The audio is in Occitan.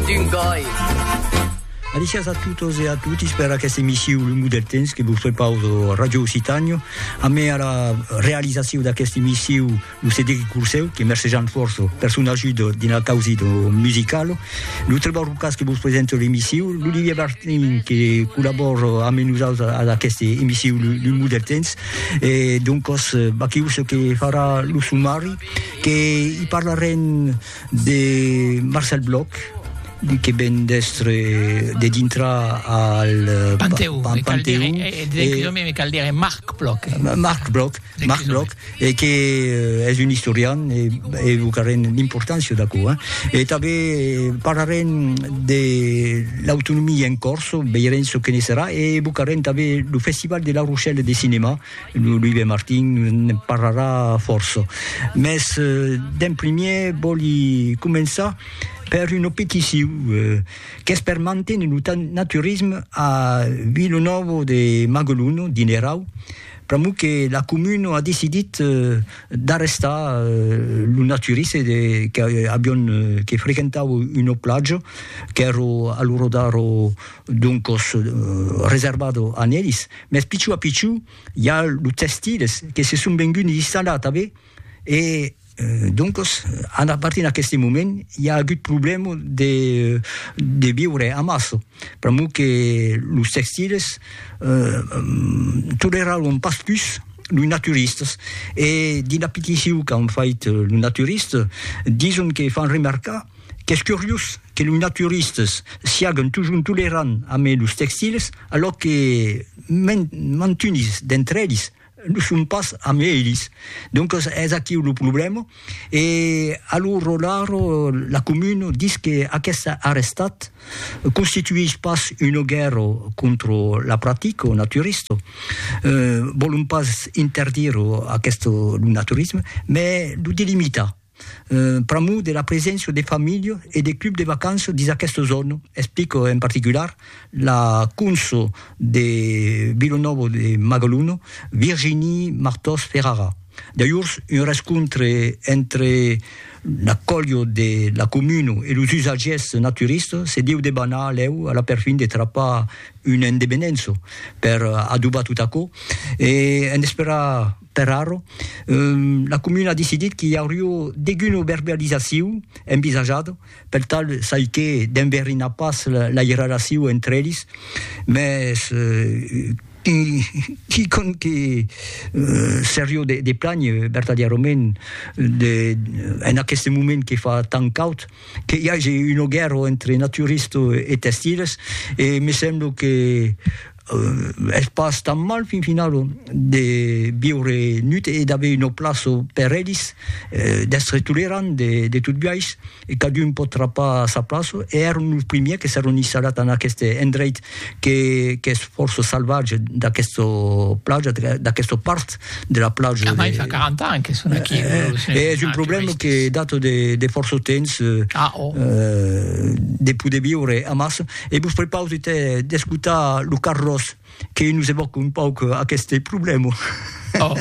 d'un gòi. Alicias a totes e a totis per aquesta emissiu Lo Mot del Temps que vos prepauso a Radio Occitània. A me a la realizaciu d'aquesta emissiu lo Cedric Curseu, que mercejant força per son ajuda dins la causi de musicalo. Lo Trevor Lucas que vos presenta l'emissiu, l'Olivier Bartin que collabora amb nosaltres a aquesta emissiu Lo Mot del Temps. E doncos, Baquius que farà lo sumari, que i parlarem De Marcel Bloch, li que ven d'èstre de dintra al Panteon, al Panteon, me cal dire Marc Bloch, Marc Bloch, Marc Bloch, e que es un istorian e evocarem l'importància d'aquò, e tanben parlarem de l'autonomia en Còrsega, veirem çò que ne serà, e evocarem tanben lo Festival de La Rochelle de cinema, lo Louis de Martin ne parlarà fòrça. Mès d'en primièr vòli començar per una peticiu qu'es per manténer lo naturisme a Vilanòva de Magalona, dins l'Erau, pr'amor que la comuna a decidit d'arrestar lo naturiste de qu'avián que frequentava una platja qu'èra a l'ora d'ara doncas reservada a nelis, Mès pichou a pichou i a los textiles que se son venguts installar tanben e doncos a partir d'aqueste moment i a agut problèma de de viure amassa pr'amor que los textiles toleraràn pas pus los naturistas e dins la peticion qu'an fait los naturistas dison que fan remarcar Qu'es curiós que los naturistes siaguen totjorn tolerants amé los textils, alòc que mantunis d'entre elis lo son pas amé elis. Doncas es aquiu lo problèma e a lo rolar la comuna dis que aqueste arrestat constituís pas una guèrra contra la practica naturista, vòlon pas interdire aqueste lo naturisme, mai lo delimitar. pr'amor de la preséncia de familha e de club de vacanças dins aquesta zòna, explica en particular la conso de Vila Nova de Magalona, Virginie Martòs Ferrara. D'ajorns, un rescontre entre la colha de la comuna e los usatgièrs naturistas se deu debanar lèu a la perfin de trapar una endevenença per adobar tot aquò e en esperar Per arro, la comuna a decidit qu'i aurió deguna verbalizacion envisajada, per tal çai que d'enverinar pas lai relacion entre elis, mès quicòm que serió de planh vertadièrament de en aqueste moment que fa tant caud, que i age una guèrra entre naturistes e testiles, e me semblo que es pas tan mal fin finau de viure nut e d'aver una plaça per elis, d'èstre tolerant de, de tot biais, e cadun pòt trapar sa plaça, e èron los primièrs que s'èron installat en aqueste endreit que, qu'es fòrça salvatge d'aquesta plaja, d'aquesta part de la plaja. Amai fa 40 ans que son aquí. E es un problèma que data de, de fòrça temps, de poder viure amassa. E vos prepausi te d'escotar lo Carlos que nos evòca un pauc aqueste problèma.